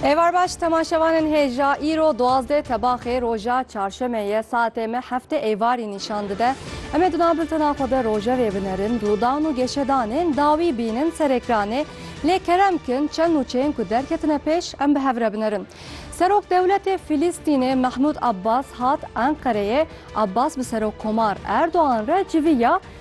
Êvar baş temaşevanên hêja îro duwazdeh tebaxê roja çarşemê ye saetê me hefte êvarî nîşan dide. Em ê di nav biltena xwe de rojevê binerin, rûdan û geşedanên dawî bînin ser êkranê. Lê kerem bikin çend nûçeyên ku derketine pêş em bi hev re binerin. Serok dewletê Fîlîstînê Mehmûd Abbas hat Enqereyê, Abbas bi Serokkomar Erdogan re civî ya,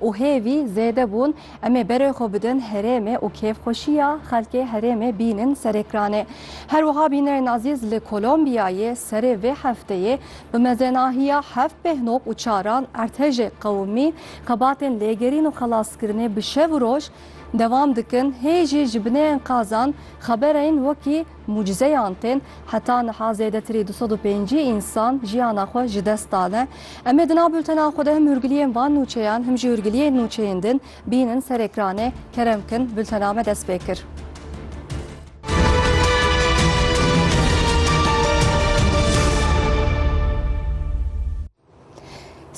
û hêvî zêde bûn, em ê berê xwe bidin herêmê û kêfxweşiya xelkê herêmê bînin serekranê. Her wiha bînerên azîz li Kolombiyayê serê vê hefteyê bi mezenahiya heft pêhnok û çaran ertejê qewimî xebatên lêgerîn û xelaskirinê bi şev û roj dewam dikin, hê jî ji binê enkazan xeberên wekî Mucizeyan tên, heta niha zêdetirî du sed û pêncî însan jiyana xwe ji dest dane. Em ê di nav bultena xwe de him hûrgiliyên van nûçeyan him jî hûrgiliyên nûçeyên din bînin ser ekranê. Kerem bikin, bultena me dest pê kir.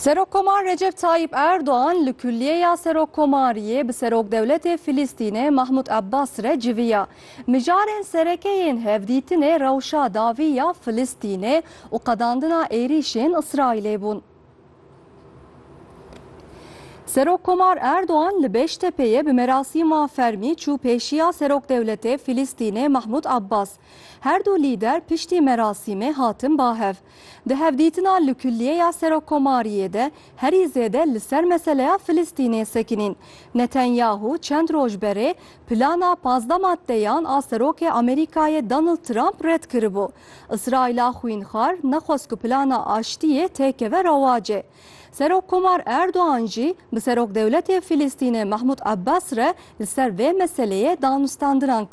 Serokkomar Recep Tayyîp Erdogan li Kulliyeya Serokkomariyê bi Serokdewletê Filîstînê Mahmûd Abbas re civiya. Mijarên sereke yên hevdîtinê rewşa dawî ya Filîstînê û qedandina êrîşên Îsraîlê bûn. Serokkomar Erdogan li Beştepeyê bi merasîma fermî çû pêşiya Serokdewletê Filîstînê Mahmûd Abbas. Her du lîder piştî merasîmê hatin bahev. Di hevdîtina li Kulliyeya Serokkomariyê de herî zêde li ser meseleya Filistînê sekinîn. Netanyahu çend roj berê plana pazdeh maddeyan a Serokê Amerîkayê Donald Trump red kiribû. Îsraîla xwînxwar nexwest ku plana aştiyê têkeve rewacê. Serokkomar Erdogan jî bi Serokdewletê Filistînê Mahmud Abbas re li ser vê meseleyê danûstandinan kir.